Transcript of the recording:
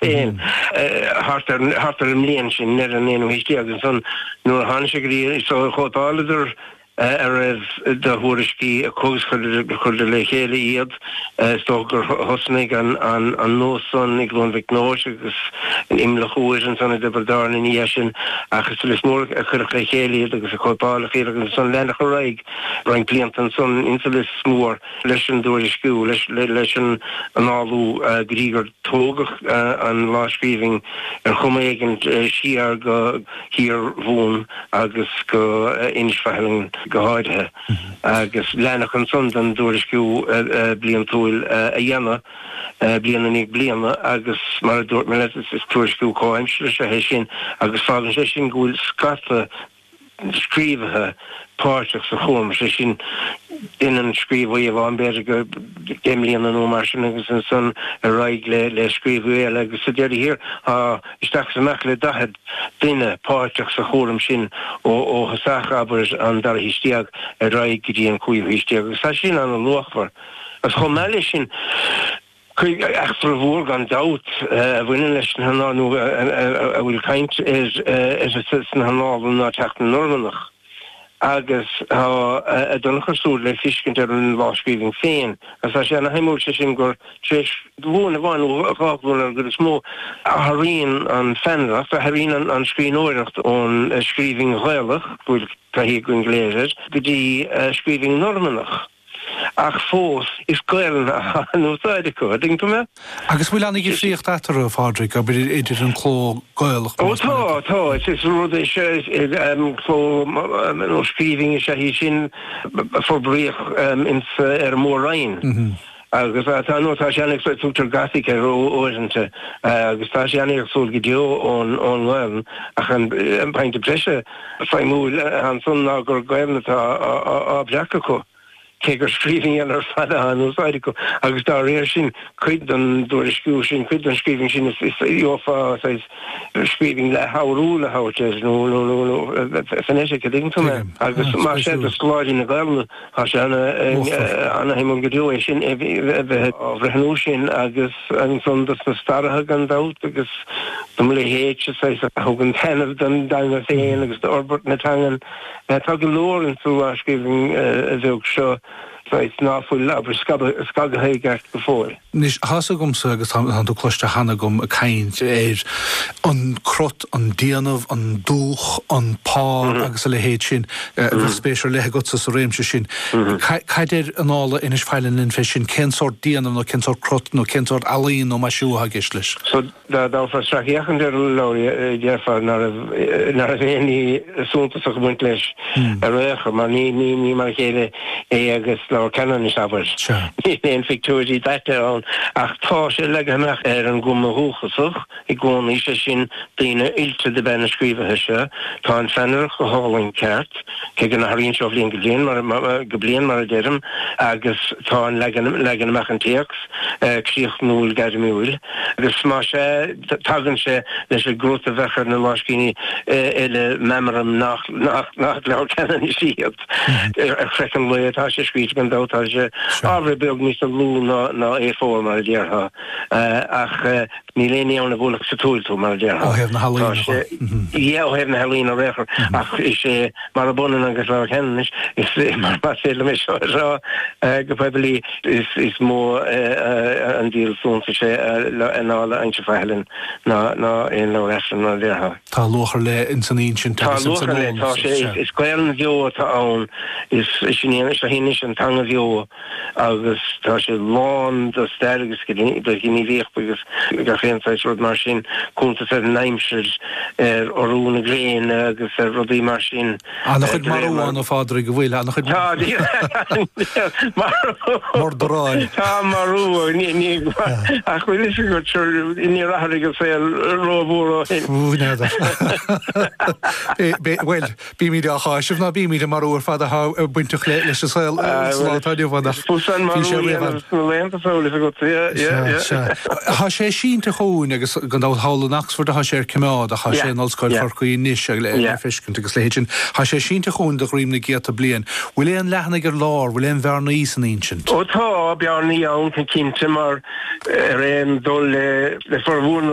Féin thart ar an mbliain sin, i ndeireadh an aonú haois déag. Agus ansan, nuair a tháinig sé go dtí so, chóipeáladar a raibh de thuairiscí acu agus chuireadar le chéile iad. Is dócha gur thosnaigh an nós san i gCluain Mhic Nóis agus in Imleach Iúir, ansan i dTiobraid Árann ina dhiaidh sin. Ach is sa Lios Mór a cuireadh le chéile iad agus a cóipeáladh iad, agus ansan leanadh ar aghaidh roinnt blianta ansan insa Lios Mór leis an dtuairisciú, leis an annálú go dtí gur Tógadh an lámhscríbhinn ar chuma éigint siar go hIarmhumhain agus go hInis Faithleann go háirithe, agus leanadh ansan den dtuairisciú bliantúil a dhéanamh, bliain i ndiaidh bliana, agus mar a dúirt mé leat, is tuairisciú comhaimseartha is ea é sin, agus fágann sé sin go bhfuil scata scríobhaithe páirteach sa chúram, sé sin duine, aon scríobhaí amháin, b'fhéidir go deich mbliana nó mar sin agus ansan ar aghaidh le le scríobhaí eile agus sa deireadh thiar tá isteach is amach le daichead duine páirteach sa chúram sin ó ó thosach, abair, an dara haois déag ar aghaidh go dtí an cúigiú haois déag agus tá sé sin ana-luachmhar agus chomh maith leis sin. Cuid eachtra mhór gan dabht a bhaineann leis na hannála, nó a bhfuil caint uirthi sna hannála, ná teacht na Normannach, agus tá a dtionchar súid le feiscint ar an lámhscríbhinn féin, agus tá sé ana shuimiúil sé sin gur tar éis glúin amháin nó dhá ghlúin ar an gcuid is mó, athraíonn an pheannaireacht, athraíonn an scríbhneoireacht ón scríbhinn Ghaelach, go bhfuil taithí againn go léir air, go dtí scríbhinn Normannach. Ach fós, is Gaolainn atá in úsáid acu, ar éigin, an ea? Agus bhfuil ana dhifríocht eatarthu, a Phádraig, abair idir an cló Gaelach, más maith leat? Ó tá, tá. Is é an rud é, seo, is cló, nó scríbhinn is ea í sin a forbraíodh ins, ar an Mór Roinn. Agus tá, nó tá sé ana-éagsúil, tugtar Gothic air uaireanta, agus tá sé ana-éagsúil go deo ón nGaolainn. Ach an pointe breise. suimiúil ansan ná gur Gaelainn atá á bhreacadh acu, cé gur scríbhinn nua ar fad athá in úsáid acu, agus dá réir sin, cuid den dtuairisciú sin, cuid den scríbhinn sin, is gheofá saghas scríbhinn leathfhoghrúil a thabhairt air, nó phonetic, a' dtuigeann tú mé? Agus más ea, do scoláirí na Gaelainne, Tá sé ana-shuimiúil go deo é sin, a bheith á bhreithniú sin agus ansan dos na staraithe gan dabht agus dom' leithéidse, saghas, a thugann taitneamh don dteanga féin agus d'fhorbairt na teangan. Tá go leor insa lámhscríbhinn bheag seo, saghas, ná fuil, abair, scagtha i gceart go fóill. Anois, tá's agamsa, agus tá tú cloiste cheana agam ag caint ar an crot, an déanamh, an dúch, an pár agus a leithéid sin, bheadh spéis ar leith agatsa sa réimse sin. Cad a deir Annála Inis Faithleann linn fé sin, cén sórt déanamh nó cén sórt crot nó cén sórt ealaín nó maisiú atá i gceist leis? Dá dtabharfá sracfhéachaint ar an leabhar déarfá ná raibh aon ní suntasach ag baint leis ar aon chor, mar ní mar a chéile é agus Leabhar Cheanannais abair. Níl aon phictiúirí daite ann ach tá sé leagtha amach ar an gcuma dhúchasach i gcónaí, sé sin, daoine oilte dob ea na scríobhaithe seo. Tá an pheannaireacht go hálainn ceart. cé go n-athraíonn sé ó bhliain go bliain, go bliain, mar a deirim, agus tá an leagan, leagan amach an téacs, críochnúil, gairmiúil, agus má sea, tagann sé leis an gcruth a bheadh ar na láimhscríbhinní eile, meamraim nach, nach, nach Leabhair Cheanannais iad. Ar chraiceann lao atá sé scríte, gan dabht, tá sé, ábhar beag níos lú ná, ná A4, mar a déarfá. Ach níl aon ní ann a bhuailfeadh sa tsúil tú, mar a déarfá. Ó thaobh na healaíne de. Yeah, ó thaobh na healaíne ar aon chor. Ach is é murab ionann agus Leabhar Cheanannais, is más féidir liom é seo a rá go poiblí, is mó an díol suntais é Annála Inis Faithleann ná aon leabhar Aifrinn, mar a déarfá. Tá luach ar leith ins an insint agus ins an eolas. Tá luach ar leith, tá sé, is Gaolainn bheo atá ann, is seo í anois an teanga bheo. agus tá sé lán de stair agus de ghníomhaíocht agus gach aon saghas rud mar sin, cuntas ar an aimsir, ar urú na gréine agus ar rudaí mar sin. Ana-chuid marú ann, a Phádraig, an bhfuil? Ana-chuid murdair ann. Tá marú ann, ach bhfuil 'fhios agat, níor athraigh an saol ró-mhór ó shin. Bhuel. Bímíd á cháiseamh, ná bímíd, an marú ar fad atá bainteach leis an saol sa lá atá inniu ann ach bhí sé riamh ann. Tá sé sínte chugainn agus gan dabht thall in Oxford atá sé ar coimeád ach tá sé in Ollscoil Chorcaí anois le feiscint agus le hinsint. Tá sé sínte chugainn de dhroim na gcéadta bliain. Bhfuil aon leathanaigh ar lár, bhfuil aon bhearnaí san insint? Ó tá bearnaí ann go cinnte mar ar aon dul le formhór na.